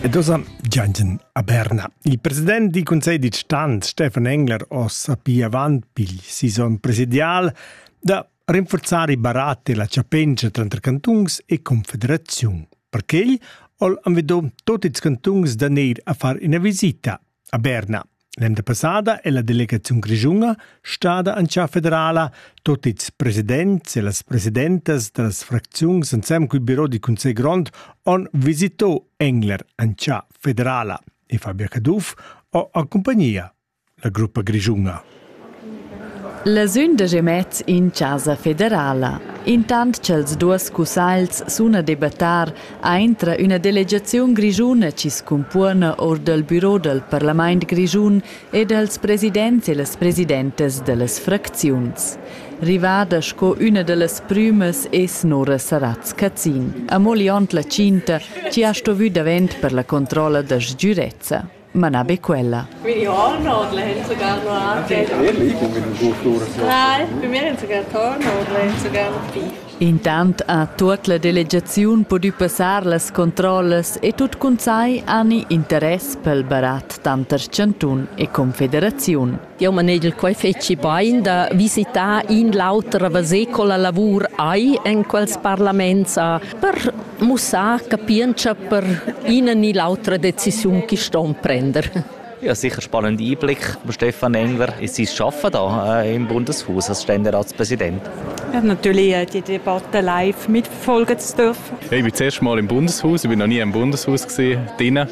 E dosa giangen a Berna. Il president di Consiglio di Stan, Stefan Engler, ossa pia avant pigl sison presidial da rinforzare i barat e la chapengia tranter cantungs e confederaziun. Per quegl ol anvedom tot ils cantungs da neir a far ina visita A Berna. L'emda passada è la delegaziun grischuna stada anchà federala. Tot ils presidents e las presidentas da las fracziuns insem cul biro di Cunsegl Grond on visito Engler anchà federala. E Fabia Caduff ho a compagnia la gruppa grischuna. La sündag e mez in chasa federala. Intant cha'ls duos cussagls sun a debattar, aintra üna delegaziun grischuna chi's cumpona our dal büro dal parlamaint grischun e dals presidents e las presidentas da las fracziuns. Rivada sco üna da las prümas es Nora Saratz-Cazin, amo liond la tschinta chi ha stovü davent per la controlla da sgürezza. ma na be quella. Quindi ho Nordlen sogar noir. Nein, bei mir haben sogar Tor Nordlen sogar noch Pi. Intant ha tuot la delegaziun pudü passar las controllas e tut cun sai ani interess pel barat tanter chantun e confederaziun. Jau manegel quai fetschi bain da visitar in l'auter a veser co la lavur hai en quels parlaments per mussar capientscha per ina ni l'autra decisiun che ston prender. Ja, sicher spannend Einblick. Stefan Engler, ist Sie arbeiten da äh, im Bundeshaus als Ständeratspräsident? Ja, natürlich äh, die Debatte live mitverfolgen zu dürfen. Ich bin das erste Mal im Bundeshaus, ich bin noch nie im Bundeshaus gesehen. Drinnen.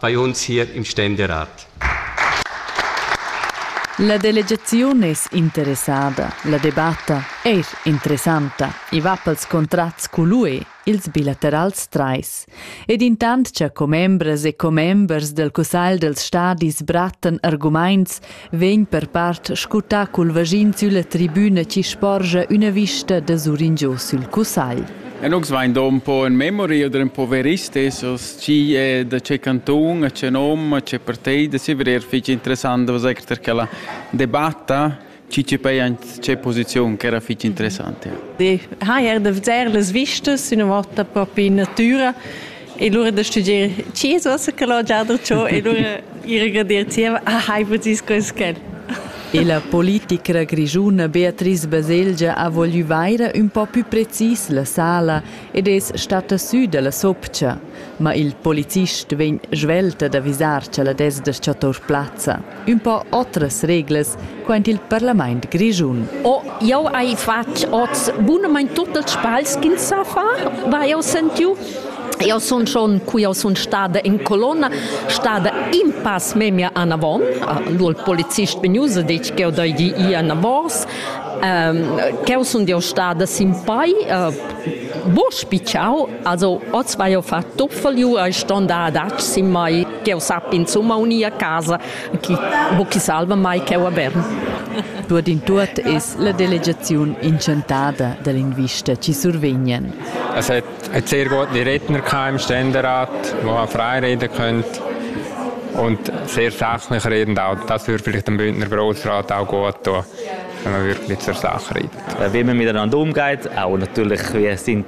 bei uns hier im Ständerat. La delegaziun es interessada, la debatta eir interessanta, i va pels contrats cul UE, ils bilaterals trais. Ed intant cha commembras e commembers del cussagl dels stadis brattan argumaints vegn per part scutà cul vaschin sülla tribüna chi sporgia üna vista da suringio sül cussagl. E nus vain do un po in memoria d'un poverist esos chi è da che canton, a che nom, a che partei da Sivrir fece interessant was per quella debatta ci ci pei an ce posizion che era fitch interessante. Die ha er de veder las vistas una volta proprio in natura E lura da studier chi es vossa cologia da cho e lura ir a gradir zieva ah hai vus quels quel. E la politicra grischuna Beatrice Baselgia ha voglü vaira ün po pü precis la sala ed es stata sü da la sopcha, ma il policist vegn svelta d'avisar cha la desda sto tour plazza. ün po otras reglas quaint il parlament grischun. Oh, jau hai fatg oz bunamain tut ils sbagls ch'ins sa far, va jau sentiu. Eu sun schon, cu eu sun stada in colonna, stada in pass memia anavon. Lur polizist vegnusa detg ch'eu deigi ir anavos. Um, ch'eu sun eu stada sin pai, uh, bo spitschau Also, oz vai jo fatto doffaliu, ei ston da adatg sin mai, che ho sappi insomma unir a casa, chi, ho chi salva mai cheu a Bern. Tuot in tuot es la delegaziun inchantada da linguiste chi survegnan. Es hat einen sehr guten Redner im Ständerat, der auch frei reden könnte und sehr sachlich redend auch. Das würde vielleicht dem Bündner Grossrat auch gut tun, wenn man wirklich zur Sache redet. Äh, wie man miteinander umgeht, auch natürlich, wie sind